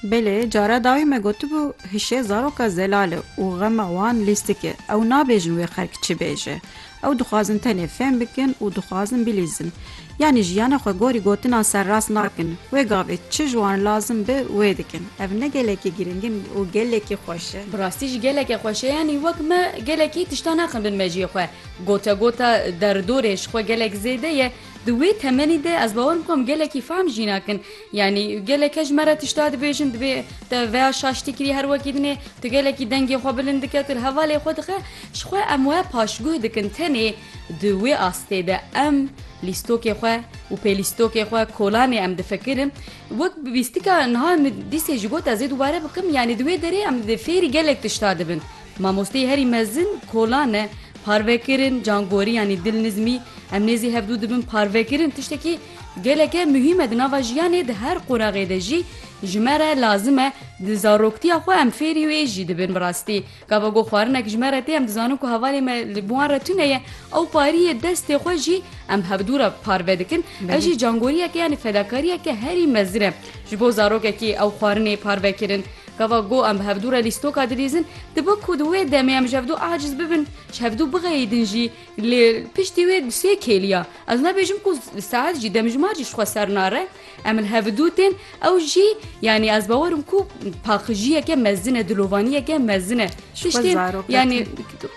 Belê, cara dawî me gotibû hişê zaroka zelal e û xema wan lîstik e. Ew nabêjin wê xelk çi bêje. Ew dixwazin tenê fêm bikin û dixwazin bilîzin. Yanî jiyana xwe gorî gotinan serrast nakin. Wê gavê çi ji wan lazim be wê dikin. Ev ne gelekî girîng in û gelekî xweş e. Bi rastî jî geleke xweş e. Yanî wek me gelekî tiştan axin bin mejiyê xwe. Gotegota derdorê ji xwe gelek zêde ye. Di wê temenî de ez bawer bikim gelekî fehm jî nakin. Yanî gelek ji me re tişta dibêjin divê te veya şaştî kirî her wekî din ê tu gelekî dengê xwe bilind dike tu li hevalê xwe dixe ji xwe em we paşguh dikin tenê di wê astê de em lîstokê xwe û pêlîstokê xwe kolanê em difikirin wek bîstika niha min dîsê jî got ez ê dubare bikim yanî di wê derê em fêrî gelek tişta dibin. Mamosteyê herî mezin Kolan e. Parvekirin, cangorî yanî dil nizmî, em nê zî hevdu dibin parvekirin tiştekî geleke muhîm e di nava jiyanê di her qonaxê de jî ji me re lazim e. Di zaroktiya xwe em fêrî wê jî dibin bi rastî. Gava ku xwarinek ji me re tê em dizanin ku hevalê me li wan re tune ye. Ew pariyê destê xwe jî em hevdu re parve dikin. Ev jî cangoriyeke yanî fedakariyeke herî mezin e ji bo zarokekî ew xwarinê parvekirin. Gava ku em bi hevdu re lîstoka dilîzin, dibe ku di wê demê em ji hevdu aciz bibin, ji hevdu bixeyidin jî. Lê piştî wê bi sê kêliya, ez nebêjim ku saet jî, demjimar jî ji xwe ser nare, em li hevdu tên, ew jî yanî ez bawer im ku paqijiyeke mezin e, dilovaniyeke mezin e. Tiştên yanî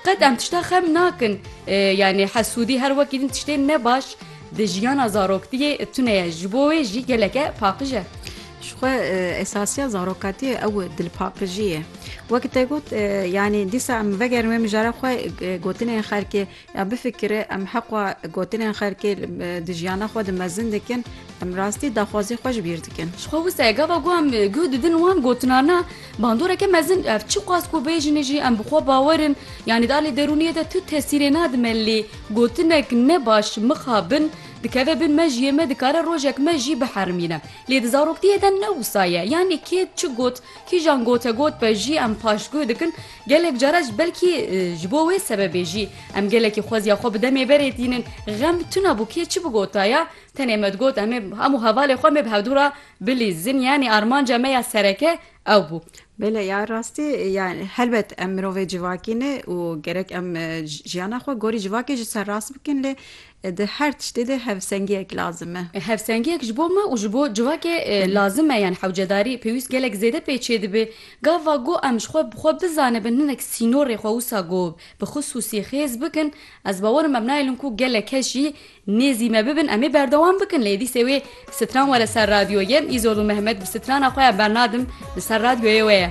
qet em tişta xem nakin, yanî hesûdî her wekî din tiştên ne baş di jiyana zaroktiyê tune ye, ji bo wê jî geleke paqij e. Ji xwe esasiya zarokatiyê ew dilpaqijî ye. Wek te got yanî dîsa em vegerin wê mijara xwe gotinên xelkê ya bifikire em heqwa gotinên xelkê di jiyana xwe di mezin dikin em rastî daxwazî xwe ji bîr dikin. Ji xwe wisa ye gava ku em guh didin wan gotinan na bandoreke mezin ev çi qas ku bêjin jî em bi xwe bawer in yanî di alî derûniyê de tu tesîrê nadime lê gotinek ne baş mixabin dikeve bin mejiyê me dikare rojek me jî biherimîne. Lê di zaroktiyê de ne wisa ye. Yanî kê çi got, kîjan gotegot be jî em paştgû dikin. Gelek cara ji belkî ji bo wê sebebê jî em gelekî xweziya xwe bi demê berê tînin. Xem tuna bû kê çi bigotaya. Tenê me digot em ê hemû hevalê xwe em ê bi hevdû re bilîzin. Yanî armanca me ya sereke ew bû. Bele ya rastî ya helbet em mirovê civakî ne û gerek em jiyana xwe gorî civakê ji ser rast bikin lê Di her tiştê de hevsengiyek lazim e. Hevsengiyek ji bo me û ji bo civakê lazim e. Yan hewcedarî pêwîst gelek zêde pê çêdibe. Gava ku em ji xwe bi xwe bizanibin hinek sînorê xwe wisa ku bi xisûsî xêz bikin, ez bawer im em naelin ku gelek kes jî nêzî me bibin em ê berdewam bikin. Lê dîsê wê stran were ser radyoyê. Îzol û Mehmet bi strana xwe ya bernadim li ser radyoyê wê ye.